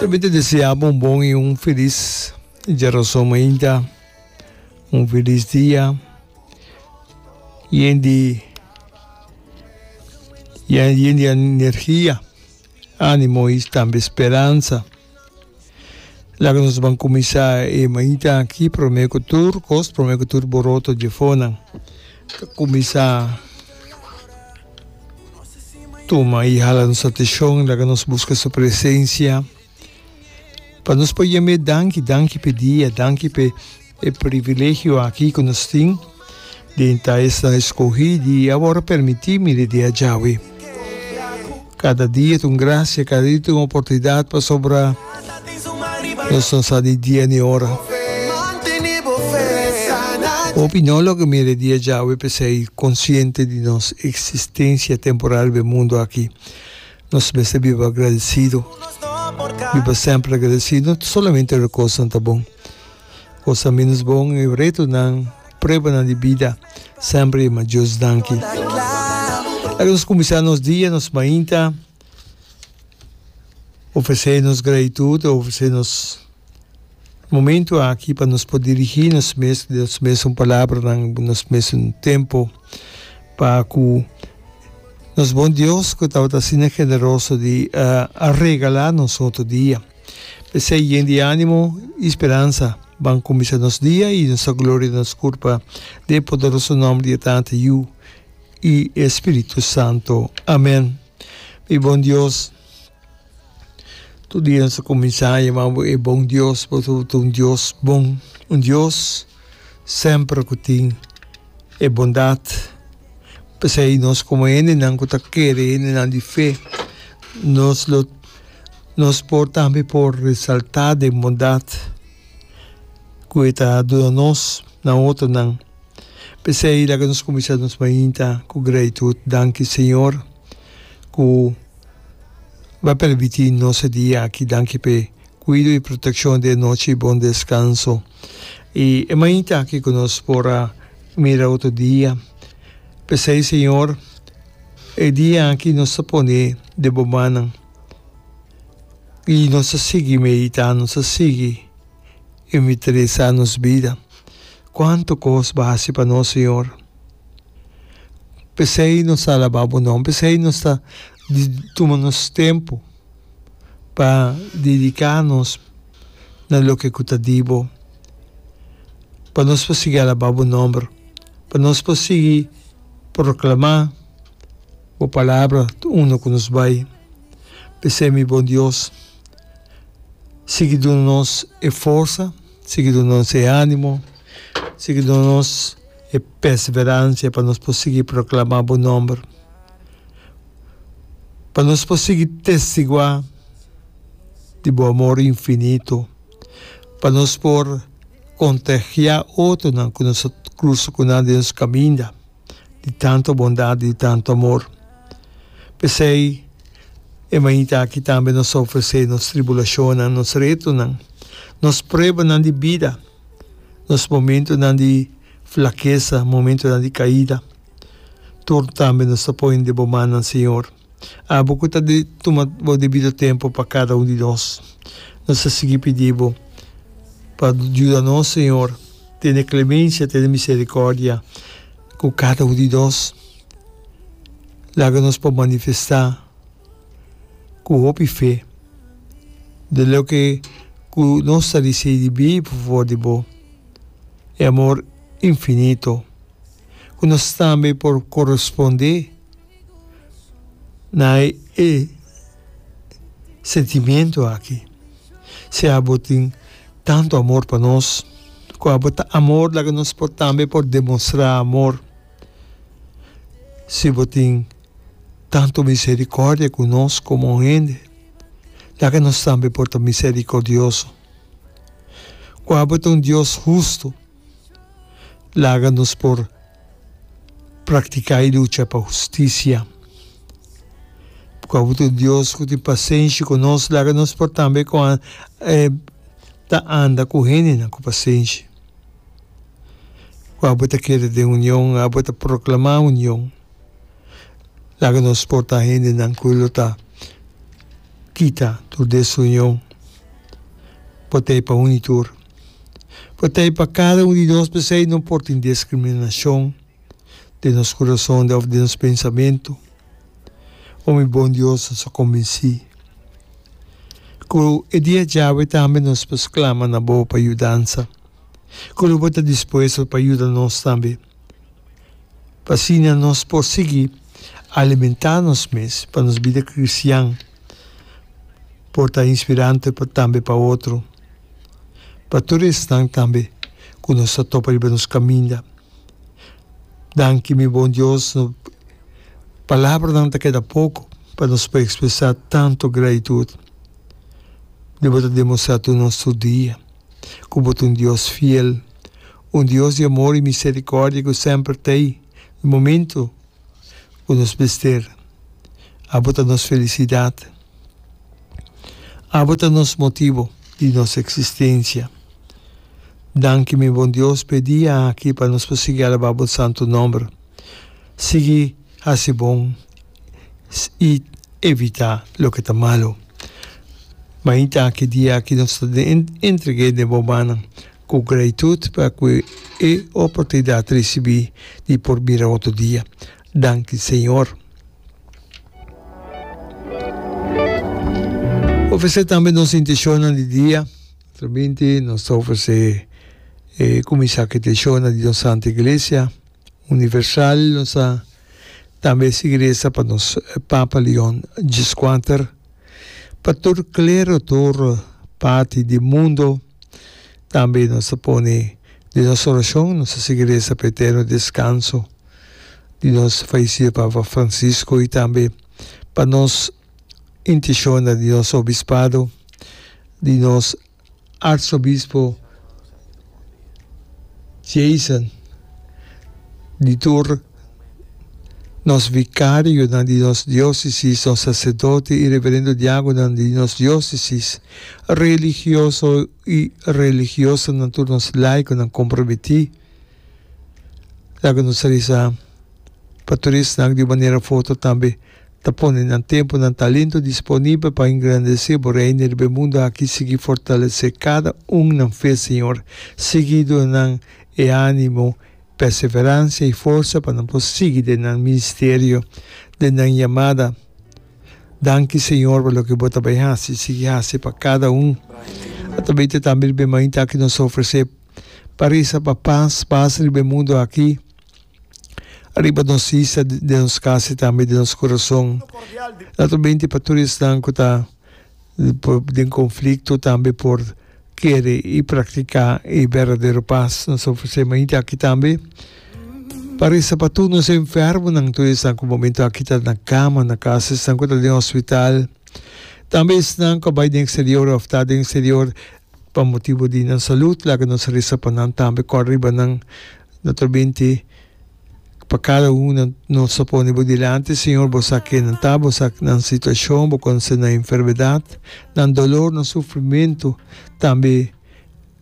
Lo mi ta desea bo un bon y un feliz Dia Los Hombre'inta, un feliz dia yen di yen di energia, animo y tambe speranza. Laga nos ban cuminsa e mainta aki prome cu tur cos, prome cu tur boroto dje fonan. Ta kuminsá tuma i hala nos ateshon laga nos buska su presensia. Pa nos por yam'é danki, danki p'e dia, danki p'e e privilegio aki ku nos tin den ta esnan eskohí di awor permití mi di di a djawe. Kada dia ta un gracia, kada dia ta un oportunidad pasobra nos no sa di dia ni ora. Hopi no lo ke mira e dia djawe pesei consciente di nos existencia temporal be mundo aki. Nos mester biba agradecido, biba semper agradecido, no solamente ora cosnan ta bon. kosa minus bon, e retonan, pruebanan di bida, semper e ma Dios danki. Laga nos kuminsá nos dia, nos mainta, ofresé nos gratitud, ofresé nos momentu aki pa nos por dirigí nos mes, di nos mes un palabranan, di nos mes un tempu, pa ku nos bon Dios ku tabata asina generoso di a regalá nos otro dia. P'esei, yen di ánimo i speransa. Ban kuminsá nos dia i nos ta gloria nos kurpa den e poderoso nòmber di e Tata, Yu i e Spiritu Santu. Amèn. Mi bon Dios, tur dia nos ta kuminsá yamá bo e bon Dios pasobra bo ta un Dios bon, un Dios semper ku tin e bondat. P'esei nos komo hendenan ku ta kere, hendenan di fe, nos lo. Nos por tambe por resaltá den bondat ku e ta duna nos na otronan. P'esei laga nos kuminsá nos mainta ku gratitud. Danki, Señor, ku Bo a permití nos e dia aki. Danki p'e kuido i protekshon di e nochi di Bon Deskanso. I e mainta aki ku nos por a mira otro dia. P'esei, Señor, e dia aki nos ta pone den Bo mannan. y nos a sigui medita, nos a sigui inventarisa nos bida, cuanto cos bo a haci pa nos Señor. Pesey nos ta alaba bo nomber, pesey nos ta tuma nos tempo pa dedica nos na loke cu ta di bo, pa nos por sigui alaba bo nomber, pa nos por sigui proclama. Bo palabra ta unda cu nos bay. P'esey mi bon Dios, sigui duna nos e forsa, sigui duna nos e animo, sigui duna nos e perseverancia pa nos por sigui proclama bo nomber, pa nos por sigui testigua di bo amor infinito, pa nos por contagia otronan cu nos a cruza cu nan den nos caminda. di tantu bondat, di tantu amor. P'esei e mainita aki tambe nos ta ofresé nos tribulashonnan, nos retonan, nos pruebanan di bida, nos momentunan di flakesa, momentunan di kaida. Tur tambe nos ta poi deb'e bo mannan, Señor. Abo ku ta tuma bo debido tempu pa kada un di nos, nos ta sigui pidi bo pa yuda nos, Señor, tene klemensia, tene miserikòrdia ku kada un di nos. Laga nos por manifestá ku hopi fe de loke ku nos ta risei di bia'i por favor di bo, e amor infinito ku nos tambe por korespondé. na hay e sentimiento aki, si abo tin tanto amor pa nos, cu abo ta amor laga nos por tambe por demostra amor, si bo tin tanto misericordia cu nos como hende, laga nos tambe por ta misericordioso, cu abo ta un Dios husto. Laga nos por praktiká e lucha pa hustisia. Ku abo ta un Dios ku tin pasenshi ku nos, laga nos por tambe ku an e ta anda ku hendenan ku pasenshi. Ku abo ta keda den union, abo ta proklamá union. Laga nos por ta hendenan ku lo ta kita tur desunion, por ta e pa uni tur. Por ta e pa kada un di nos p'esei no por tin diskriminashon den nos kurason òf den nos pensamentu. Ome i bon Dios nos a kombinsí ku e dia djawe tambe nos pues klama na bo pa yudansa, ku lo bo ta dispuesto pa yuda nos tambe, pa asina nos por sigui alimentá nos mes pa nos bida kristian. por ta inspirante tambe pa otro. Pa tur esnan tambe ku nos a topa riba nos kaminda, danki mi bon Dios, palabranan ta keda poko pa nos por ekspresá tantu gratitut. Mi bo ta demostrá tur nos tur dia ku bo ta un Dios fiel, un Dios di amor i miserikòrdia ku semper t'ei di momentu. ku nos mester. Abo ta nos felisidat. Abo ta nos motibu di nos eksistensia. Danki mi Bon Dios p'e dia aki pa nos por sigui alabá bo santu nòmber. Sigui hasi bon i evitá loke ta malu. Mainta ki dia aki nos ta entreg'é den bo mannan. Ku gratitud pa ku e oportunidat risibí di por bira otro dia. Danki, Señor. Ofresé tambe nos inteshonnan di dia. Otro binti nos ta ofresé e kuminsá ku e inteshonnan di nos Santa Iglesia Universal. Nos ta tambe sigui resa pa nos Papa Leon Xvi pa tur klero, tur parti di mundo. Tambe nos ta pone den nos orashon nos ta sigui resa pa e eterno deskanso di nos falesido Papa Francisco i tambe pa nos intishonnan di nos obispado, di nos arsobispo Jason, di tur Nos vikarionan di nos diósesis, nos saserdote i reverendo diágonan di nos diósesis, religioso i religiosanan tur nos laikonan komprometí. Laga nos a resa pa tur esnan di un manera forte tambe ta pone nan tempu, nan talento disponibel pa engrandesé Bo Reino riba e mundu aki. Sigui fortalesé kada un nan fe, Señor. Sigui duna nan e ánimo Perseveransia i forsa pa nan por sigui den nan ministerio, den nan yamada. Danki Señor pa loke Bo ta bai hasi i sigui hasi pa kada un. Atabeyta tambe riba e mainta aki nos ta ofresé pa resa pa pas, pas riba e mundu aki, riba nos isa, den nos kas i tambe den nos kurason. Lato benti pa tur esnan ku ta. den konflikto tambe por kere i praktiká e berdadero pas. Nos ta ofresé mainta aki tambe pa resa pa tur nos enfermonan, tur esnan ku momentu aki ta na kama na kas, esnan ku ta den hospital, tambe esnan ku a bai den eksterior òf ta den eksterior pa motibu di nan salut. Laga nos resa pa nan tambe, kòrda riba nan, naturalmente. pa cada una nos ta pone bo dilanti Señor bo sa ke nan ta bo sa nan situacion bo conoce nan enfermedad nan dolor nan sufrimento tambe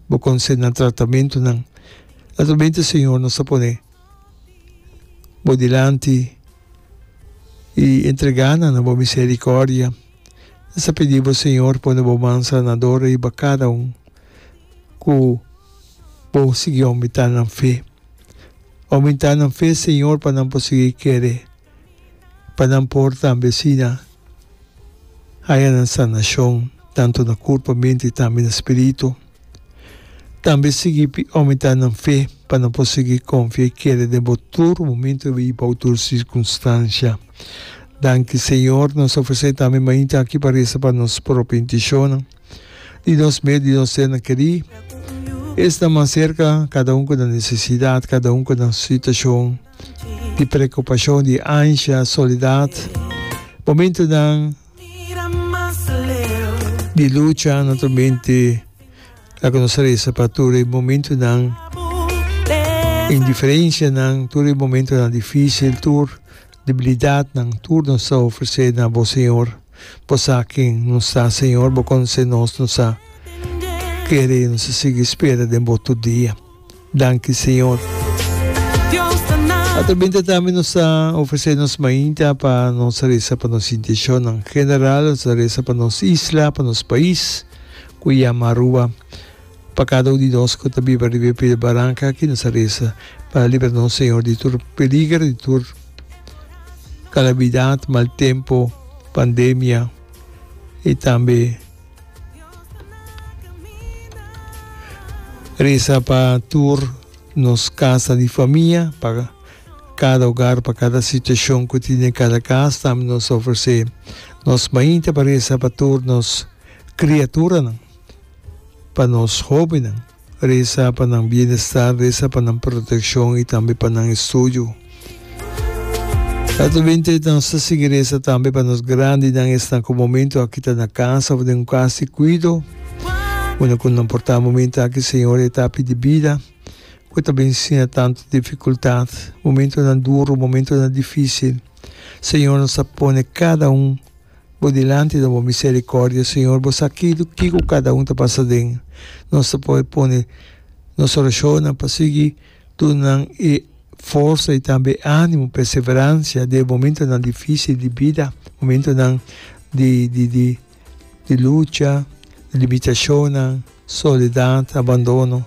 bo conoce nan tratamentonan atramente Señor nos ta pone bo dilanti y entrega nan na bo misericordia nos ta pidi bo Señor pone bo man sanador riba cada un cu bo sigui aumentá nan fe. Oumenta nan fe, Señor, pa nan por sigui kere, pa nan por tambe asina haya nan sanacion, tantu na curpa, mente y tambe na spiritu. Tambe sigui oumenta nan fe pa nan por sigui confia y kere den bo tur momento y bou tur circunstancia. Danki, Señor. Nos ofrece tambe mainta aki pa reza pa nos propi inticion. di nos mes, di nos ternan kerí. Esnan mas serka, kada un ku na nesesidat, kada un ku na su situashon di preokupashon, di ansha, solidat. Momentunan di lucha naturalmente la ku nos ta resa pa tur e momentunan indiferenshanan, tur e momentunan difísil, tur. Debilidadnan tur nos ta ofresé na Bo, Señor. Bo sa ken nos ta, Señor, Bo conoce nos, nos a kere, nos a sigui spera den Bo tur dia. Danki, Señor. Atrabinta tambe nos ta ofresé nos mainta pa nos resa pa nos intencionnan general, nos ta resa pa nos isla, pa nos pais cu yama Aruba. Pa kada un di nos ku ta biba riba e pie di baranka aki nos a resa pa libra nos Señor di tur peliger, di tur kalamidat, mal tempu, pandemia i tambe resa pa tur nos kasa di famia, pa kada ogar, pa kada situashon ku tin den kada kas. Tambe nos a ofresé nos mainta pa resa pa tur nos kriaturanan. Pa nos hóbennan. Resa pa nan bienestar, resa pa nan protekshon i tambe pa nan estudio. Naturalmente nos ta sigui resa tambe pa nos grandinan esnan ku momentu aki ta na kas òf den un kas di kuido. Una ku nan por ta momentu aki Señor etapi di bida ku e ta bin sina tantu difikultat, momentunan duru, momentunan difísil. Señor nos ta pone kada un. Bo dilanti ta bo misericordia, Señor, bo sa kidu kico cada un ta pasa den. Nos ta por pone nos oracionnan pa sigui dunanan e forsa y tambe e animo, perseverancia den e momentonan dificil di bida, momentonan di di di di lucha, limitacionnan, soledad, abandono.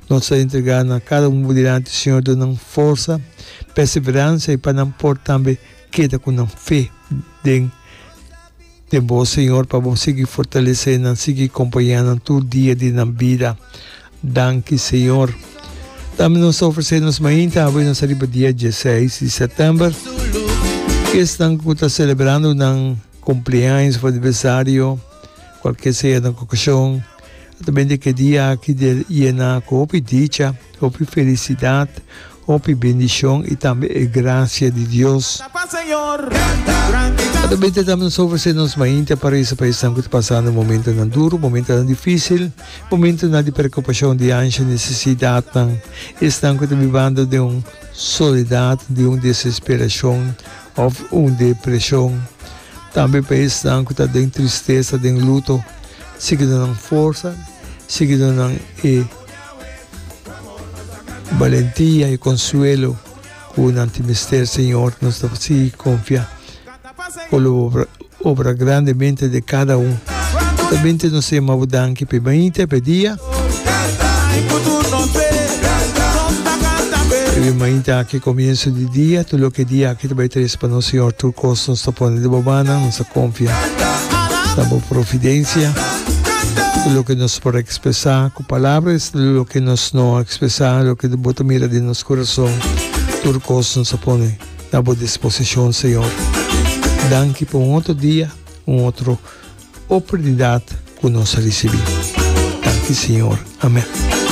Nos ta entrega nan cada un bo dilanti, Señor, dunnan forsa, perseverancia y pa nan por tambe. Keda ku nan fe den den Bo, Señor, pa Bo sigui fortalesé nan, sigui kompañá nan tur dia di nan bida. Danki, Señor. Tambe nos ta ofresé nos mainta hawenos ariba dia diesseis di sètèmber. Ku esnan ku ta selebrando nan kumpleaños òf aniversario, kualkier sea nan okashon. Ta bende ke dia aki di yena ku hopi dicha, hopi felisidat, hopi bendishon i tambe e grasia di Dios. Ta bende tambe nos ofresé nos mainta pa resa pa esnan ku ta pasando momentunan duru, momentunan difísil, momentunan di preokupashon di ansha, nesesidatnan, esnan ku ta bibando den un soledat, den un desesperashon. Òf un depreshon. Tambe pa esnan ku ta den tristesa, den luto, sigui duna nan forsa, sigui duna nan e balentia, e konsuelo ku nan tin mester, Señor. Nos ta sigui konfia. Obra grande mente de cada un. Ta bente nos se ma bo danki pe bañita pe dia. Pebe mañita aki comienso di dia tur loke dia aki ta bay trece pa nos Señor tur cos nos ta pone deba mana nos ta confia na bo providencia tur loke nos por expresa cu palabra es tur loke nos no expresa loke bo ta mira den nos corazon tur cos nos ta pone. Ta bo disposicion Señor. Danki pa un otro dia, un otro oportunidad cu nos a ricibi. Danki Señor. Amen.